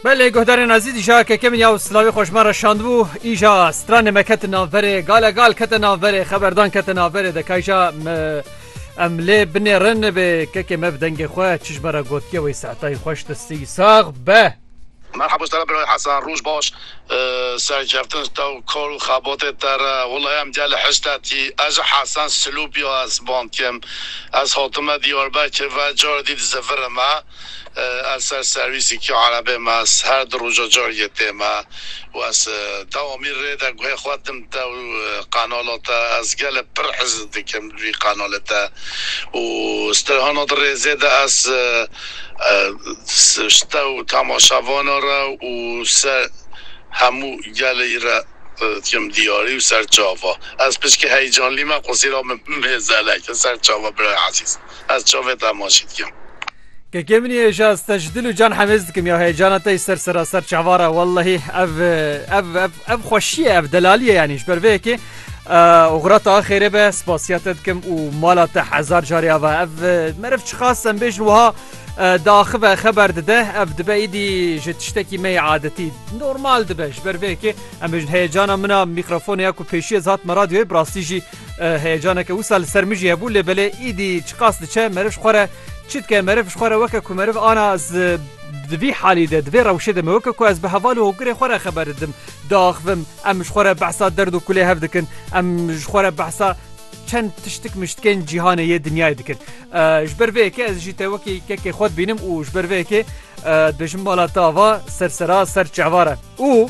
Belê guhdarên ezî dîşa keke min ya û silavê xweş me re şandibû îja stranê me ketin navberê gale gal kete navberê xeberdan kete navberê de kayja me em lê binê rin bê kekê me bi dengê xwe çijbera gotiye wê seetayî xweş distî sax be. Merhaba Ustara Birayê Hesan, roj baş. serkeftin ji te û kar û xebatê te re. Walayi em gelê hiştetî. Ez ji Hesen Silûpî ya Esband im. Ez hatime Diyarbekir ve carê dî dizivire me. Ez ser serwîsîkî erebê me. Ez her di roja carîgê tê me û ez dewamî rê de guhê xwe din te û qenala te. Ez gelê pir hizd dikim. Wî kanalê te û strehana di rêzê de ez sta û temaşa vana re û ser hemû gelê î re dikim diyarî û ser çava. Ez pişkî heyecanlî me qusîra min mêze leke ser çava birayê ezîz. Ez çavê te hema jî dikim. Kekê min yê êjaz te ji dil û can hemêz dikim ya heyecana te yî ser seraser çavar e wellehî ev ev ev ev xweşî ye ev delalî ye yanî ji ber vê yekê xira te axêrê be spasiya te dikim û mala te hezar carê ava ev meriv çixas em bêjin wiha di axive xeber dide ev dibe îdî ji tiştekî me adetî normal dibe ji ber vê yekê em bêjin heyecana min a mîkrafonê ya ku pêşî ez hatime radyoyê bi rastî jî Heyecaneke wisa li ser min jî hebû lê belê îdî çiqas diçe meriv ji xwe re çi dike? Meriv ji xwe re weke ku meriv ana ez di vî halî de di vê rewşê de me weke ku ez bi heval û hokgirê xwe re xeber didim diaxivim. Em ji xwe re behsa derd û kulê hev dikin. Em ji xwe re behsa çend tiştik miştikên cîhanê yê dinyayê dikin. Ji ber vê yekê ez jî te wekî kekê xwe dibînim û ji ber vê yekê dibêjim mala te ava ser sera ser çehva re û